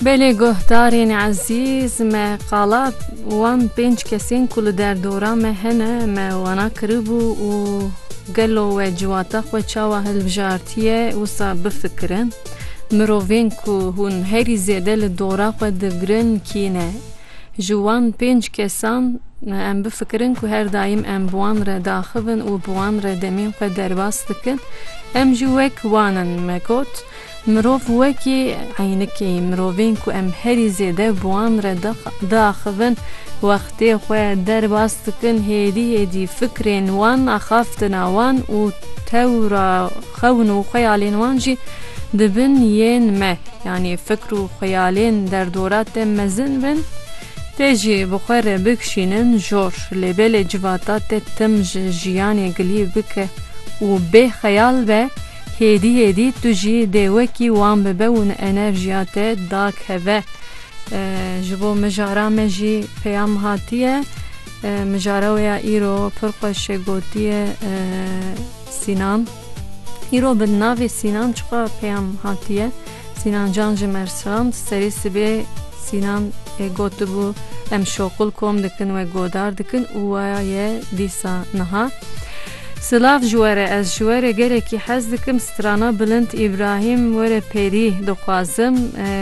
Belê guhdarên ezîz, me qala wan pênc kesên ku li derdora me hene me wana kiribû û gelo we ciwata xwe çawa hilbijartiye wisa bifikirin. Mirovên ku hûn herî zêde li dora xwe digirin kî ne? Ji wan pênc kesan em bifikirin ku her daîm em bi wan re diaxivin û bi wan re demên xwe derbas dikin, em jî wek wan in, me got. Mirov wekî eynikê mirovên ku em herî zêde bi wan re diaxivin, wextê xwe derbas dikin hêdî hêdî fikrên wan, axaftina wan û tewra xewn û xeyalên wan jî dibin yên me. Yanî fikr û xeyalên derdora te mezin bin, te jî bi xwe re bikişînin jor. Lêbelê civata te tim ji jiyanê gilî bike û bê xeyal be. Hêdî hêdî tu jî dê wekî wan bibe û ni enerjiya te dakeve. Ji bo mijara me jî peyam hatiye. Mijara wê ya îro pir xweş e gotiye Sînan. Îro bi navê Sînan çiqas peyam hatiye. Sînan can ji Mersan serê sibê Sînan ê gotibû em şoqil kom dikin we godar dikin û waya ye dîsa niha. Silav ji were ez ji were gelekî hez dikim strana bilind Îbrahîm were perî dixwazim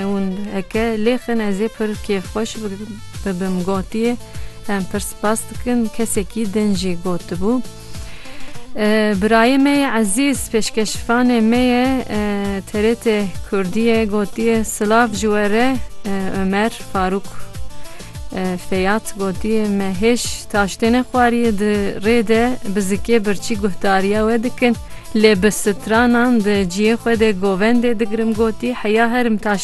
hûn heke lêxin ezê pir kêf xweş bibim gotiye em pir spas dikim kesekî din jî gotibû birayê me ye ezîz pêşkeşvanê me ye TRT kurdî ye gotiye silav ji were Omer Farûk. Feyyad gotiye, Me hêj taştêne xwariye di rê de bi zikê birçî guhdariya we dikin lê bi stranan di ciyê xwe de govendê digirim gotî heya herim taştêne.